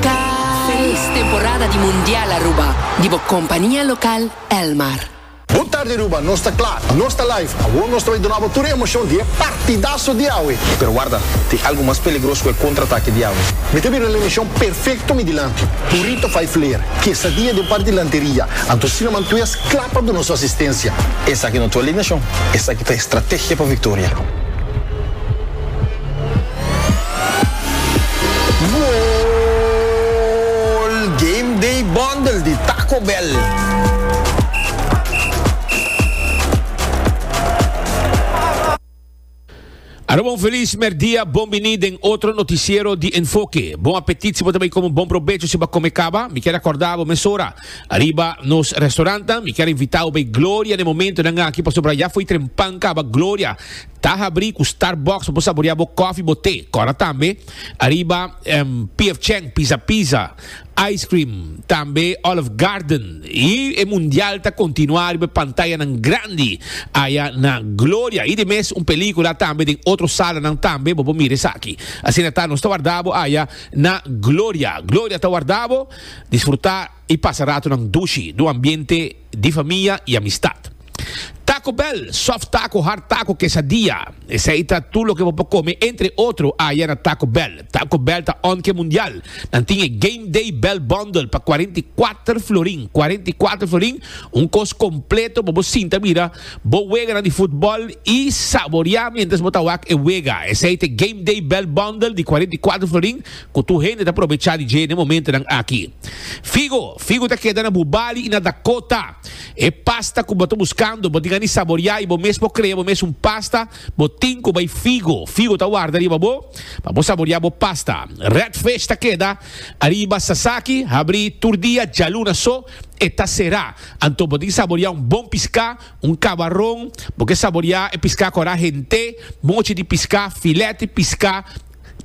Felis temporada di Mundial Aruba di bo compania local Elmar. Bon tarde Aruba, nos ta kla, nos ta live. Awor nos ta bai duna bo tur e emocion di e partidaso di awe. Pero warda, tin algo mas peligros ku e contraatake di awe. Mi ta bira na emocion perfecto mi dilanti. Burrito vijf leer, quesadilla den par dilanteria, anto Sinnerman tues kla pa duna su asistencia. Esaki no ta alineacion, esaki ta estrategia pa victoria. Goal! Game Day Bundle di Taco Bell. Aruba un felis merdia, bon bini den otro noticiero di Enfoke. Bon apetit si bo ta bay come, bon probecho si bo a come caba. Mi kier a corda bo mesora ariba nos restaurantnan. Mi kier a invita bo bay Gloria den momentonan aki pasobra ya fo'i trempan caba Gloria. Ta habri ku Starbucks pa bo saborea bo kofi, bo te. Kora tambe ariba PF Chang, Pizza Pizza, Ice Cream, tambe Olive Garden. I e mundial ta kontinuá riba e pantayanan grandi aya na Gloria. I di mes un pelíkula tambe den otro salanan tambe. Bo por mira esaki. Asina ta, nos ta warda bo aya na Gloria. Gloria ta warda bo. Disfrutá. i pasa ratonan dushi n'un ambiente di famia i amistat. Taco Bell, soft taco, hard taco, quesadilla, esei ta tur loke bo por come entre otro aya na Taco Bell. Taco Bell ta onke mundial. Nan tin e Game Day Bell Bundle pa cuarenta i cuater florin, cuarenta i cuater florin, un cos completo pa bo sinta mira bo weganan di futbol i saboria mientras bo ta wak e wega. Esei ta e Game Day Bell Bundle di cuarenta i cuater florin, Ku tur hende ta probechá di dje den momentonan aki. Figo, figu ta keda na bu bali i na Dakota. E pasta ku bo ta buskando, bo tin a ni saboriá i bo mes por krea bo mes un pasta, bo tin ku bai figo. Figo ta warda riba bo pa bo saboriá bo pasta. Red Fish ta keda ariba Sasaki, habrí tur dia, djaluna so e ta será. Anto bo tin ki saboriá un bon piská, un kabaron, bo ke saboriá e piská kòrá hent'é, mochi di piská, filèt di piská,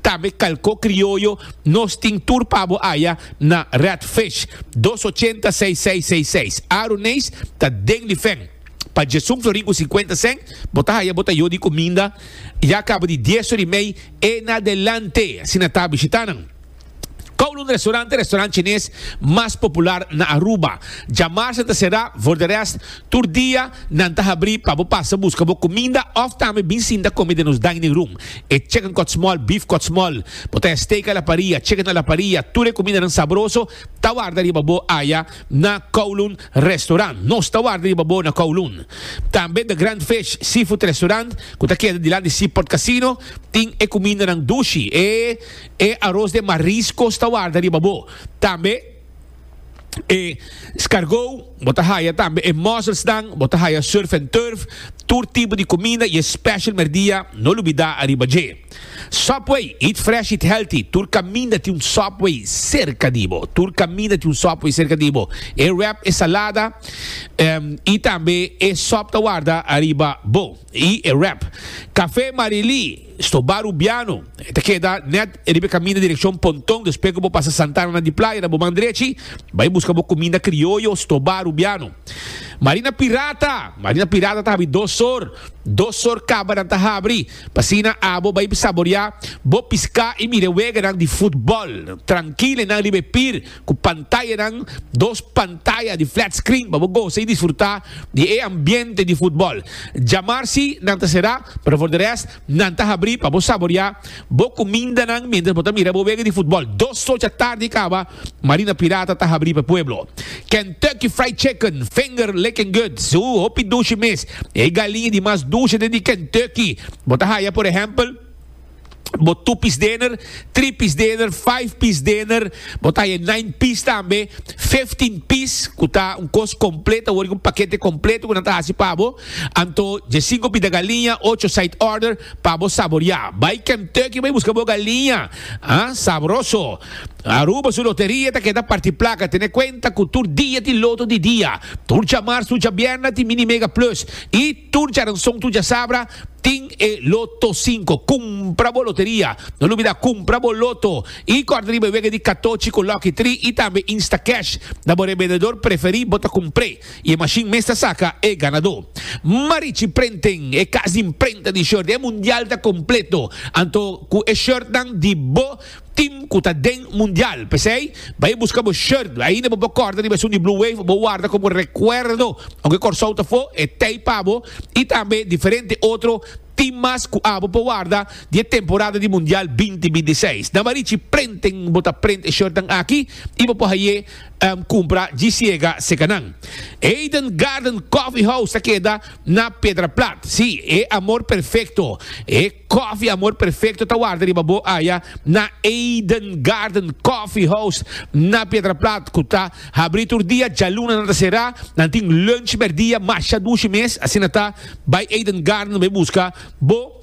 Tambe kalko krioyo nos tin tur pa bo aya na Red Fish dos ochenta seis seis seis seis Aaron Nees ta den di fen pa Jason Florin ku sinkuenta sèn bo ta haya bo ta yo di kuminda ya kaba di dies ori mei e na delante asina ta bishita nan. Kowloon Restaurant e restaurant chines mas popular na Aruba. Djamarsa ta será, for de rest, tur dia nan ta habrí pa bo pasa buska bo kuminda òf tambe bin sinta kome den nos dining room. E chicken kòtsmòl, beef kòtsmòl, bo ta haya steak a la paria, chicken a la paria, tur e kumindanan sabroso ta warda riba bo aya na Kowloon Restaurant. Nos ta warda riba bo na Kowloon. Tambe The Grand Fish Seafood Restaurant, ku ta keda dilanti Seaport Casino, tin e kumindanan dushi, e E aros den mariscos ta warda riba bo. Tambe e scargou bo ta haya tambe e musselsnan, bo ta haya surf and turf, tur tipo di cuminda y e special merdia no lubida ariba dje. Subway, eat fresh eat healthy, tur caminda tin un Subway cerca di bo, tur caminda tin un Subway cerca di bo. E wrap e salada em y tambe e sop ta warda ariba bo y e wrap. Café Marily. Stobá Rubiano, e ta keda nèt riba e kaminda direkshon Ponton, despues ku bo pasa Santana na di Playa na bo man drechi, bai buska bo kuminda krioyo Stobá Rubiano. Marina Pirata, Marina Pirata ta habri dos sor, dos sor kabanan ta habri, p'asina abo bai saboriá bo piská i mira e weganan di futbòl trankil enan riba e pir, ku pantayanan, dos pantaya di flat screen pa bo gosa i disfrutá di e ambiente di futbòl. Djamar si nan ta será, pero for di rest nan ta habrí pa bo saboriá bo kumindanan miéntras bo ta mira bo wega di futbòl. Dos sochi atardi kaba, Marina Pirata ta habrí pa e pueblo. Kentucky Fried Chicken, finger licking good, so hopi dushi mes. E galiña di mas dushi den di Kentucky bo ta haya, por ehèmpel, bo two piece dinner, three piece dinner, five piece dinner, bo ta e nine piece tambe, fifteen piece ku ta un kos kompleto, wor un pakete kompleto ku nan ta hasi pa bo. Anto dje sinko pita galiña, ocho side order pa bo saboriá. Bai Kentucky bai buska bo galiña, ah, sabroso. Aruba su loteria ta keda parti plaka, tene kuenta ku tur dia tin loto di dia. Tur djamarz, tur djabierna tin Mini Mega Plus i. Tur djaranson tur djasabra tin e loto sinko. Kumpra bo loteria. No lubida kumpra bo loto i kòrda riba e wega di katochi ku lòki tri i tambe Instacash. Na bo rebendedor preferí bo ta kumpr'é i e mashin mes ta saka e ganadó. Marichi Prenten, e kas di imprenta di short, e mundial ta kompleto. Anto ku e shortnan di bo Team cu ta den mundial. P'esey, bay busca bo shirt. Ainda bo por corta riba esun di Blue Wave, bo warda como recuerdo aunke Corsou ta fo, e tey pa bo y tambe diferente otro team mas cu abo por warda di e temporada di mundial binti binti seis. Na Marichi Printing bo ta print e shirtnan aki y bo por haye cumpra djisiega seca nan. Eden Garden Coffee House ta keda na Pedraplat. Sí, e amor perfecto. E. Coffee Amor Perfecto ta warda riba bo aya na Eden Garden Coffee House na Piedraplat cu ta habri tur dia, djaluna nan ta cera, nan tin lunch merdia masha dushi mes, asina ta bay Eden Garden bay busca bo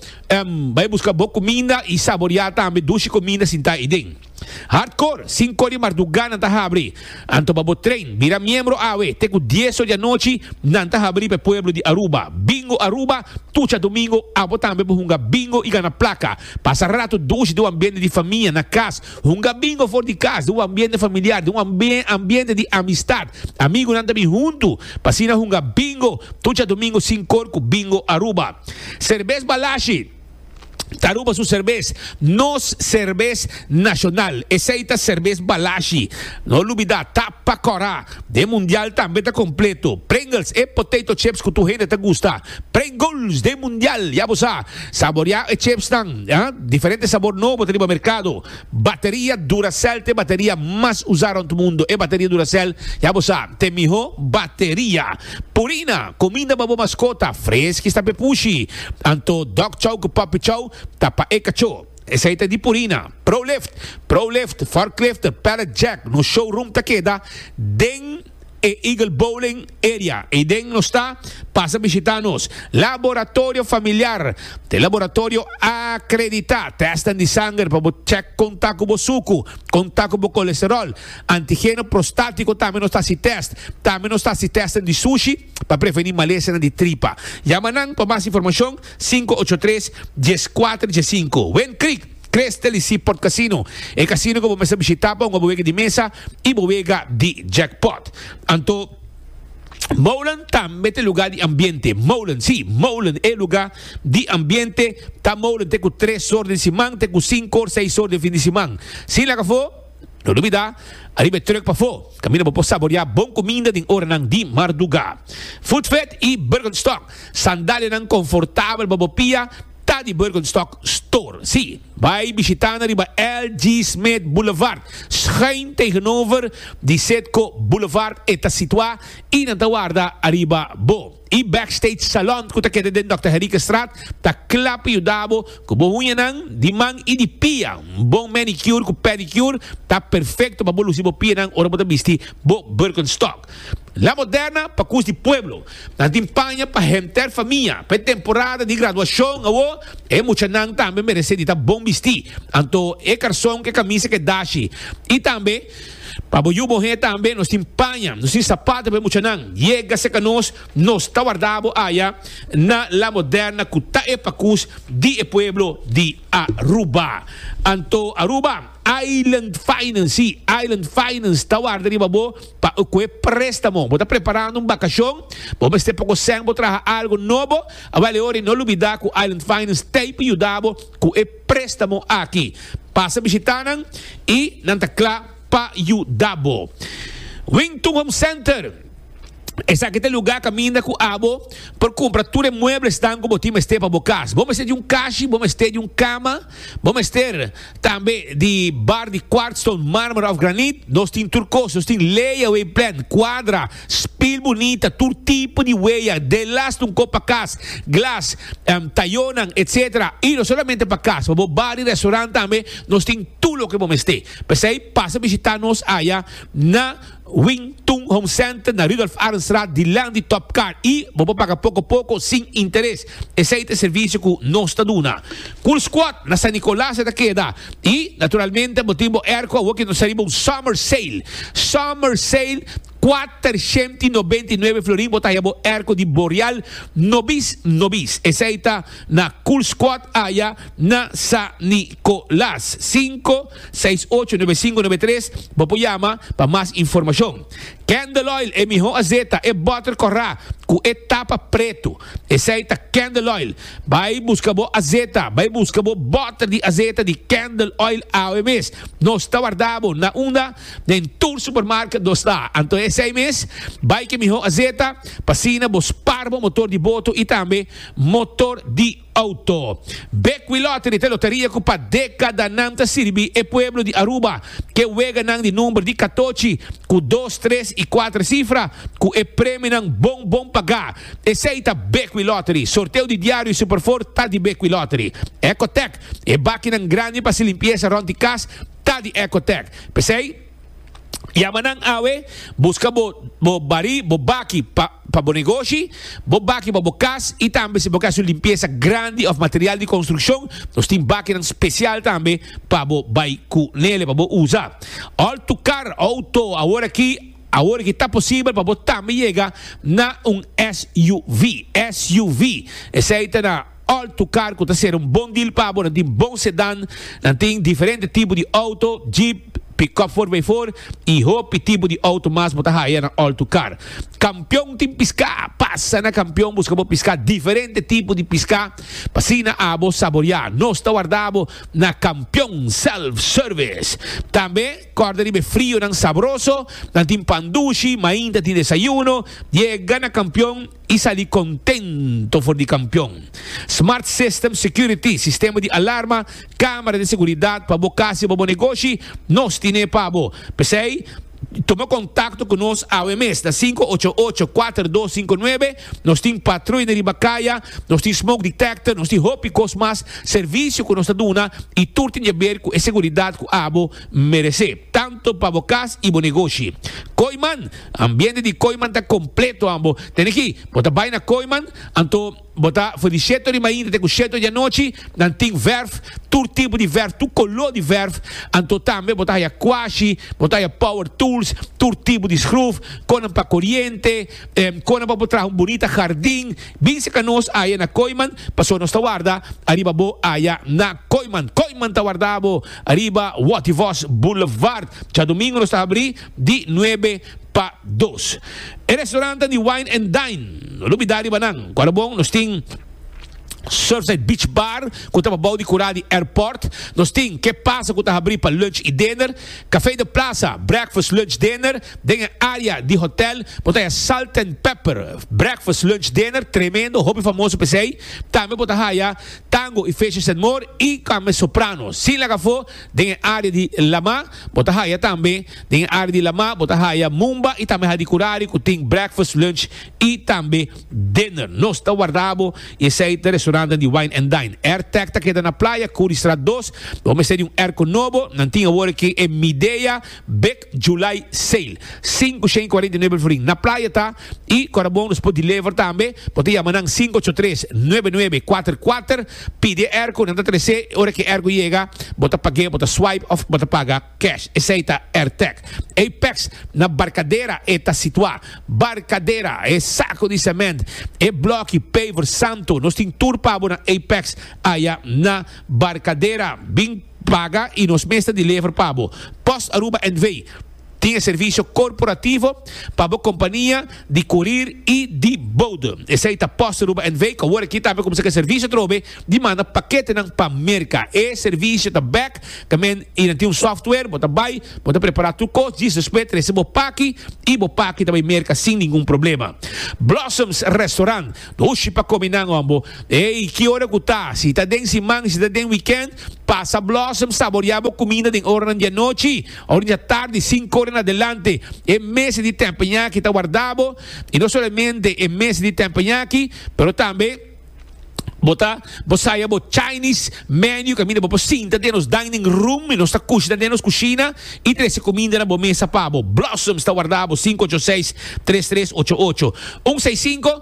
bay busca bo cuminda y saboria tambe dushi cuminda sinta ayi den. Hardcore, Sinko di marduga nan ta habri. Anto pa bo train, bira miembro awe, te ku dies or di anochi nan ta habri pa e pueblo di Aruba. Bingo Aruba, Tucha domingo abo tambe por hunga bingo i gana plaka. Pasa ratu dushi den un ambiente di famia, na kas. Hunga bingo for di kas, den un ambiente familiar, den un ambiente di amistad. Amigunan ta bin huntu, pa asina hunga bingo Tucha domingo Sinkor ku Bingo Aruba. Serbes Balashi. Aruba su serbes, nos serbes nacional. Esey ta serbes Balashi. No lubida, ta pa cora. Den mundial tambe ta completo. Pringles, e potato chips cu tur hende ta gusta. Pringles den mundial, ya bo sa. Saboria e chipsnan, diferente sabor nobo ta riba mercado. Bateria Duracell ta e bateria mas usá rònt mundu. E bateria Duracell, ya bo sa, ta e mihó bateria. Purina, kuminda pa bo maskota, freski stap e pushi. Anto Dog Chow ku Puppy Chow ta pa e kachó. Esei ta di Purina. Prolift, Prolift, Forklift, Pallet Jack, nos showroom ta keda den. e Eagle Bowling Area ei den nos ta, pasa bishita nos Laboratorio Familiar, ta e laboratorio akreditá, tèsten di sanger pa bo chèk kon ta ku bo suku, kon ta ku bo kolesteròl, antigeno prostátiko tambe nos ta hasi tèst, tambe nos ta hasi tèsten di sushi pa prevení malesenan di tripa. Yama nan pa mas informashon sinku ocho tres, dies kuater, dies sinku. Win Creek. Tres tel y Seaport Casino, e casino cu bo mester bishita pa hunga bo wega di mesa y bo wega di jackpot. Anto Molen tambe ta lugar di ambiente. Molen, si, Molen e lugar di ambiente. Ta Molen te cu tres hor den siman, te cu cinco hor, seis hor den fin di siman. Sin laga fo, no dubida, ariba e truck pafo. Caminda bo por saborea bon cuminda den oranan di marduga. Food Vet y Birkenstock, sandalianan confortabel pa bo pia. Ta di Birkenstock Store, sí. Bai bishitá nan riba L. G. Smith Boulevard, schuin tegenover di Citgo Boulevard e ta situá i nan ta warda ariba bo. E Backstage Salon ku ta keda den Dòkter Henriquestraat ta kla pa yuda bo ku bo uñanan di man i di pia. Un bon manicure ku pedicure ta perfekto pa bo lusi bo pianan ora bo ta bisti bo Birkenstock. La Moderna pa cus di pueblo. Nan tin paña pa henter famia. Pa e temporada di graduacion awo, e muchanan tambe merece di ta bon bisti. Anto e carson cu e camisa ke dashi. Y tambe, pa bo yu bohe tambe nos tin paña, nos tin sapato pa e muchanan. Yega seca nos, nos ta warda bo aya na La Moderna cu ta e pa cus di e pueblo di Aruba. Anto Aruba. Island Finance, sí, Island Finance ta warda riba bo pa cu e préstamo. Bo ta preparando un bacacion, bo mester poco sèn bo traha algo nobo, awal e ora i no lubida cu Island Finance t'ey pa yuda bo cu e préstamo aki. Pasa bishita nan i nan ta cla pa yuda bo. Wington Home Center. Esaki ta e lugá kaminda ku abo por kumpra tur e mueblesnan ku bo tin mester pa bo kas. Bo mester di un kashi, bo mester di un kama, bo mester tambe di bar di kwartston, mármara òf granit. Nos tin tur kos. Nos tin lay-away plan, kuadra, spil bunita, tur tipo di weya, delas di un kop pa kas, glas, tayonan, etc. I no solamente pa kas, pa bo bar i restorant tambe nos tin tur loke bo mester. P'esei pasa bishitá nos aya na. Wing Tung Home Center na Rudolf Arendstraat dilan di Top Car y bo por paga poco poco sin interes. Esey ta e servicio cu nos ta duna. Cool Squad na San Nicolas e ta keda y naturalmente bo tin bo airco awo cu nos ta riba un summer sale. Summer sale kuater shent i nobenta i nuebe florin bo ta haya bo airco di Boreal nobis nobis. Esey ta na Cool Squad aya na San Nicolas. Cinco. seis ocho nove sinku nove tres Bo por yama pa mas informashon. Candle Oil e miho azeta e bòter kòrá ku e tapa pretu. Esei ta Candle Oil. Bai buska bo azeta, bai buska bo bòter di azeta di Candle Oil awe mes. Nos ta warda bo na unda den tur supermarket nos ta. Anto esei mes, bai ke miho azeta pa asina bo spar bo motor di boto i tambe motor di. Auto. Beckwith Lottery ta e loteria cu pa decadanan ta sirbi e pueblo di Aruba cu e weganan di number di catochi cu dos, tres y cuater cifra cu e premionan bon bon paga. Esey ta Beckwith Lottery. Sorteo di diario y Superfour ta di Beckwith Lottery. Ecotec, e bakinan grandi pa haci limpieza rond di cas ta di Ecotec. P'esey. Yama nan awe, buska bo bo barí, bo baki pa pa bo negoshi, bo baki pa bo kas i tambe si bo ka hasi un limpiesa grandi òf material di konstrukshon, nos tin bakinan spesial tambe pa bo bai ku nele pa bo usa. Òl tukar outo aworakí, Aworakí ta posibel pa bo tambe yega na un SUV. SUV esei ta na. Alto car cu ta ser un bon deal pa bo. Nan tin bon sedan, nan tin diferente tipo di auto, jeep, pick-up for bay for y hopi tipo di auto mas bo ta haya na Alto car. Campeon tin pisca, pasa na Campeon busca bo pisca, diferente tipo di pisca pa asina abo saborea. Nos ta warda bo na Campeon Self Service. Tambe corda riba e frio nan sabroso, nan tin pan dushi, mainta tin desayuno. Yega na Campeon. i sali kontento for di kampion. Smart System Security, sistema di alarma, kamera di seguridat pa bo kas i pa bo negoshi, nos tin'é pa bo. P'esei, tuma kontakto ku nos awe mes na sinku ocho ocho, kuater dos sinku nuebe. Nos tin patrui na riba kaya, nos tin smoke detector, nos tin hopi kos mas servisio ku nos ta duna i tur tin djaber ku e seguridat ku abo meresé. Tanto pa bo cas y bo negoshi. Kooiman, Ambiente di Kooiman ta completo an bo tene ki bo ta bay na Kooiman anto bo ta for di sheto di mainta te cu sheto di anochi nan tin verf tur tipo di verf tur color di verf anto tambe bo ta haya quashi bo ta haya power tools tur tipo di schruf conan pa coriente conan pa bo traha un bonita hardin bin seka nos haya na Kooiman paso nos ta warda ariba bo haya na Kooiman Kooiman ta warda bo Ariba Wativos Boulevard, djadomingo nos ta habrí di nuebe pa dos. E restaurant ta di Wine and Dine, no lo bidá riba nan. Ku a la bon, nos tin Surfside Beach Bar, ku ta pa bou di kurá di airport. Nos tin Ke Pasa ku ta habrí pa lunch i dinner. Café de Plaza, breakfast, lunch, dinner. Den e área di hotel por ta haya Salt and Pepper, breakfast, lunch, dinner, tremendo, hopi famoso p'esei. Tambe por ta haya tango y fecha senmor y tambe soprano. Sin laga afo den e área di Lamá bo ta haya tambe Den e área di Lamá bo ta haya Mumba y tambe Hadicurari cu tin breakfast, lunch y tambe dinner. Nos ta warda bo y esey ta restaurantnan di Wine and Dine. Airtech ta keda na Playa Curistraat dos. Bo mester di un airco nobo. Nan tin awor aki e Midea. July sale sinku shen cuarenta y nuebe florin na playa ta y ora bon nos por deliver tambe bo ta yama nan sinku ocho tres nuebe nuebe cuater cuater pidi e ercu nan ta trece y ora ki ercu yega bo ta page bo ta swipe of bo ta paga cash esey ta Airtech Apex na Barcadera e ta situa Barcadera e saco di cement e bloki paver santo nos tin tur pa bo na Apex aya na Barcadera bin Paga y nos mes ta deliver pa bo. Post Aruba NV. Tin e servicio corporativo pa bo compania di corir y di bodem. Esey ta Post Aruba NV cu awor aki tambe cuminsa cu e servicio atrobe di manda paketenan pa Merca. E servicio ta bek tamen y nan tin un software, bo ta bay, bo ta prepara tur cos djis despues trece bo paki y bo paki ta bay Merca sin ningun problema. Blossoms Restaurant. Dushi pa comi nan hombo. Ey, ki ora cu ta, si ta den siman y si ta den weekend, Pasa Blossom saborea bo cuminda den oranan di anochi o riba tardi, cinco ora en adelante. E mes di tempeñaki ta warda bo y no solamente e mes di tempeñaki, pero tambe bo ta bo saya bo Chinese menu caminda bo por sinta den nos dining room y nos ta cushna den nos cushina y trece cuminda na bo mesa pa bo. Blossom ta warda bo cinco ocho seis tres tres ocho ocho un seis cinco.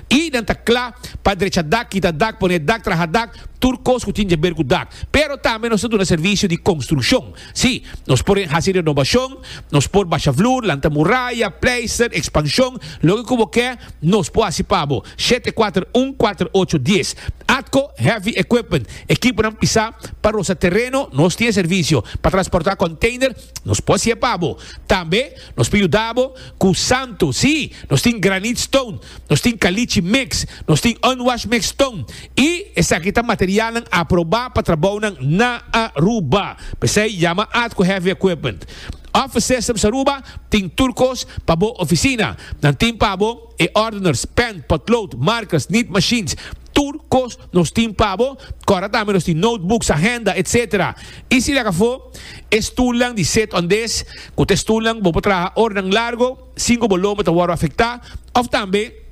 I nan ta kla pa drecha dak, kita dak, pone dak, traha dak, tur kos ku tin dje ber ku dak. Pero tambe nos ta duna servisio di konstrukshon. Sí, nos por hasi renobashon, nos por basha vloer, lanta muraya, pleister, ekspanshon, loke ku bo ke, nos por hasi pa bo. Shete kuater un kuater ocho dies. Atco Heavy Equipment, ekiponan pisá pa rosa tereno, nos tin e servisio. Pa transportá konteiner, nos por hasié pa bo. Tambe nos por yuda bo ku santo, sí, nos tin granit stone, nos tin kalichi mix, nos tin unwash mix tun i esaki ta materialnan aprobá pa trabounan na Aruba. P'esei yama at ku Heavy Equipment. Office Systems Aruba tin tur kos pa bo ofisina. Nan tin pa bo e ordeners, pen, potlood, markers, nit machines, tur kos nos tin pa bo, kòrda tambe nos tin notebooks, ahenda, etc. I si lek afó e stulnan di sit-on-dis ku ta e stulnan ku bo por traha ora nan largo. Sinku bo lomba ta wòrdu afektá òf tambe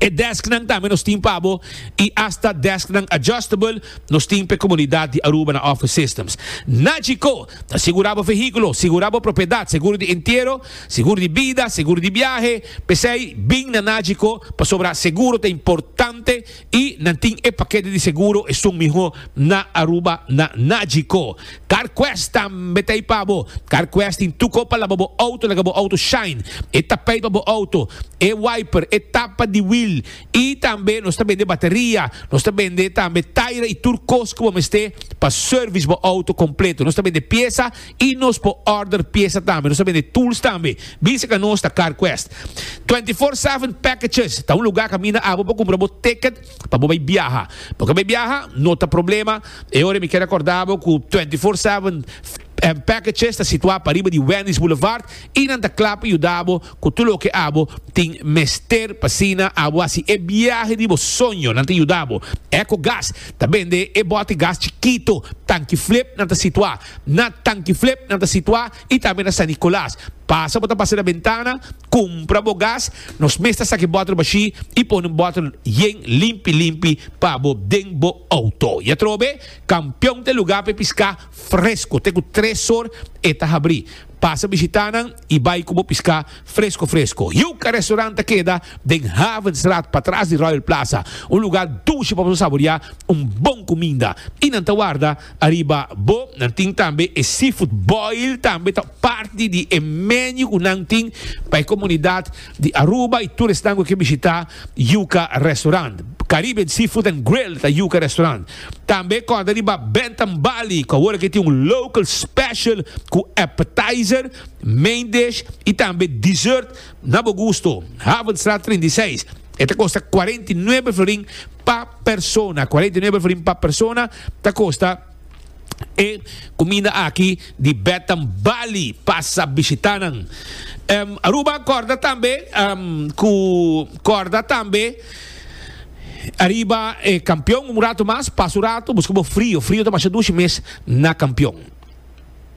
e dèsknan tambe nos tin pa bo i asta dèsknan adjustable nos tin pa e komunidat di Aruba na Office Systems. Na Chicó, ta sigurá bo vehíkulo, sigurá bo propiedat, seguro di entiero, seguro di bida, seguro di biahe. P'esei, bin na Nachicó pasobra seguro ta importante. Y nan tin e paquete di seguro esun miho na Aruba na Nagico. Carquest tambe ta ey pa bo. Carquest tin tuco pa laba bo auto laga bo auto shine, e tapijt pa bo auto, e wiper, e tapa di wiel y tambe nos ta bende bateria, nos ta bende tambe taira y tur cos cu bo mester pa service bo auto completo. Nos ta bende pieza Y nos por order pieza tambe. Nos ta bende tools tambe. Bin seca nos ta CarQuest. 24 7 Packages ta un lugar a caminda abo pa cumpra bo ticket pa bo bay biaha. Bo ke bay biaha? No ta problema. E ora mi kier acorda bo cu 24 7 Packages ta situa pariba di Wendy's Boulevard y nan ta cla pa yuda bo cu tur loke abo tin mester pa asina abo haci e biahe di bo soño. Nan ta yuda bo. Ecogas ta bende e bote gas chikito, tanki flip, nan ta situa. Na Tankiflip nan ta situá i tambe na San Nicolas. Pasa bo ta pasa na bentana, kumpra bo gas. Nos mes ta saki bòtel bashí i pone un bòtel yen limpi limpi pa bo den bo outo. I atrobe, Kampion ta e lugá pa e piská fresko. Te ku tres or e ta habrí. Pasa bishitá nan i bai ku bo piská fresko fresko. Yuca Restaurant ta keda den Havenstraat patras di Royal Plaza, un lugá dushi pa bo saboriá un bon kuminda. I nan ta warda Ariba bo nan tin tambe e seafood boil tambe ta parti di e menu ku nan tin pa e komunidat di Aruba i tur esnan ku ke bishita Yuka Restaurant. Caribbean Seafood and Grill ta Yuka Restaurant. Tambe kòrda riba Bentham Bali ku awor ake tin un local special ku appetizer, main dish i tambe dessert. Na bo gusto. Havenstraat trinta i seis, E ta kosta kuarenta i nuebe florin pa persona. Kuarenta i nuebe florin pa persona ta kosta e kuminda aki di Betam Bali. Pasa bishita nan. Em, Aruba kòrda tambe em, ku kòrda tambe ariba e kampion un ratu mas. Pasa un ratu, buska bo frio. Frio ta masha dushi mes na kampion.